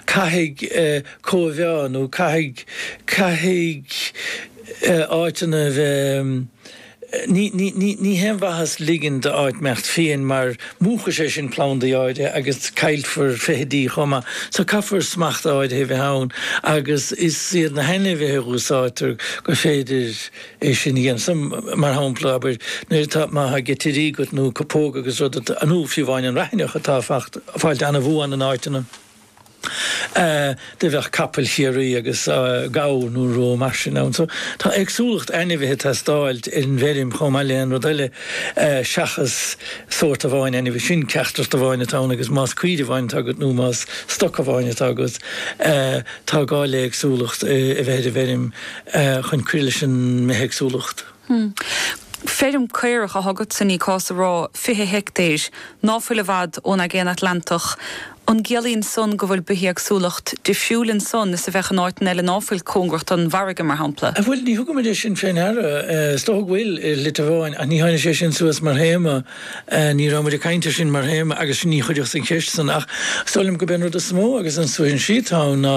Caithfidh cóimheá nó caithfidh, caithfidh áiteanna a bheith, ní, ní, ní, ní haon mhaitheas ligean d'áit imeacht fiain mar múchfadh sé sin plandaí áirithe agus caillfear feithidí chomh maith. So caithfear smacht áirithe a bheith ann agus is iad na hainmhithe a úsáidtear gur féidir, É sin a dhéanamh, mar shampla, abair, nuair atá, má tá geitirí agat nó cupóga agus rud a, nó fiú amháin an raithneach atá ag fáil an-bhuan in áiteanna. A, do bheadh capaill Chiarraí agus a, gabhar nó rud mar sin ann. So, tá éagsúlacht ainmhithe ag teastáil ar an bhfeirm chomh maith le aon rud eile a, seachas sórt amháin ainmhí. Sin ceacht amháin atá ann agus más caoirigh amháin atá agat nó más stoc amháin atá agat, a, tá gá le éagsúlacht a bheith ar an bhfeirm. eh, chun cur leis an mbithéagsúlacht. Hmm. Feirm caorach atá agatsa ní gá a rá, 20 heictéir, ná fuil i bhfad ón Aigéan Atlantach. An gciallaíonn san go bhfuil bithéagsúlacht difriúil ansan is a bheadh in áiteanna eile ná fuil cóngarach don bhfarraige, mar shampla? Eh, bhuel, níor thugamair é sin fé ndeara. Eh, is dócha go bhfuil éin leithéid ann, ach níor tháinig sé sin suas mar théama. Eh, ní raibh muid ag caint ar sin mar théama agus níor cuireadh an cheist san. Ach is dóigh liom go b'é an rud is mó agus is suaithinsí atá ann ná,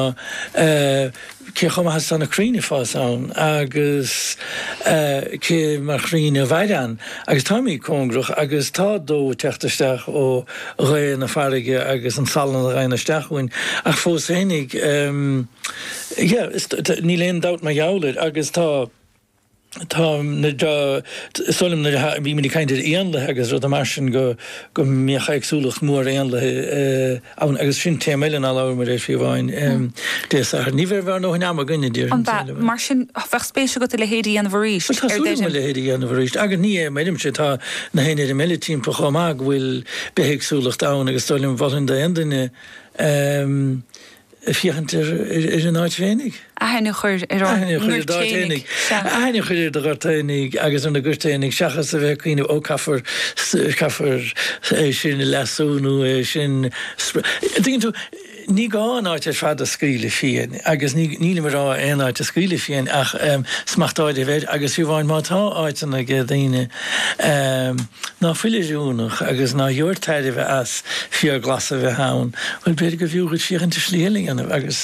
eh, cé chomh maith is tá na crainn ag fás ann agus cé mar chrainn a mhaireann. Agus táimid cóngarach agus tá dó ag teacht isteach ó ghaoth na farraige agus an salann a ghabhann isteach chugainn. Ach fós féinig, yeah, níl aon dabht mar gheall air agus tá. Tá, samhlaím nuair a bhí muid ag caint ar éanlaith agus rudaí mar sin go go mbeadh éagsúlacht mhór éanlaithe ann agus sin téama eile ná labhramair air fiú amháin Dé Sathairn. Ní bheidh bheadh nó an am againn a deir an, samhlaím, eile. Mar sin bheadh spéis agat a leithéid a dhéanamh arís ar deireadh. Tá súil agam a leithéid a dhéanamh arís agus mar a deirimse tá gach aon fheirm eile timpeall chomh maith go bhfuil bithéagsúlacht ann agus samhlaím mholfainn d'aon duine ag féachaint ar an áit féinig. aithne a chur ar ár ngort féinig. aithne a chur ar do ghort fhéinig agus ar na goirt fhéinig seachas a bheith ag cuimhneamh ó caithfear caithfear é sin a leasú nó é sin a dtuigeann tú ní gá an áit ar fad a scaoileadh fiain agus nílim ag rá aon áit a scaoileadh fiain ach smacht áirithe a bheith air agus fiú amháin má tá áiteanna ag daoine Ná fuil oiriúnach agus ná gheobhair tairbhe as, féar glas a bheith ann, bhuel, b'fhéidir go mb'fhiú dhuit féachaint ar shlí eile a dhéanamh. Agus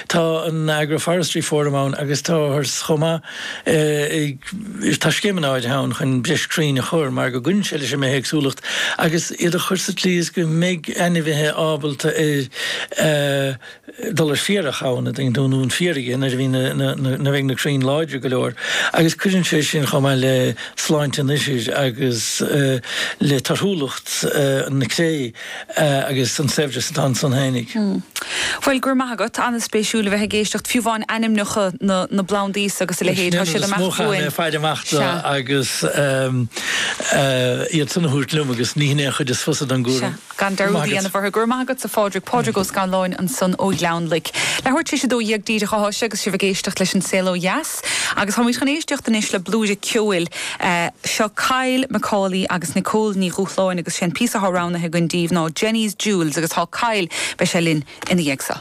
tá an Agroforestry Forum ann agus tá thairis chomh maith ag, tá scéimeanna áirithe ann chun breis crainn a chur mar go gcuireann sé leis an mbithéagsúlacht agus iad a chur sa tslí is go mbeidh ainmhithe ábalta ar a dul ar féarach ann, ag dúnadh an fhéaraigh nuair a bhí na bheidh na crainn láidir go leor agus cuireann sé sin chomh maith le sláinte an ithir agus le torthúlacht na cré agus an saibhreas atá ansan féinig. Bhuel, go raibh maith agat, an-spéisiúil a bheith ag éisteacht, fiú amháin ainmneacha na bplandaí agus a leithéid, tá siad amach chugainn. Is maith le faire amach do agus iad san a thabhairt liom agus ní hin é an chuid is fusa den gcúram. gan dearúd a dhéanamh orthu. Go raibh maith agatsa, a Phádraig, Pádraig Ó Scanláin ansan ó Ghleann Loic. Leathuair tar éis a dó dhéag díreach atá sé agus sibh ag éisteacht leis An Saol Ó Dheas agus táimid chun éisteacht anois le blúire ceoil. Seo Kyle Macaulay agus Nicole Ní Dhubhshláine agus sé an píosa atá roghnaithe againn díbh ná Jenny's Jewels agus tá Kyle, beidh sé linn ina dhiaidh seo.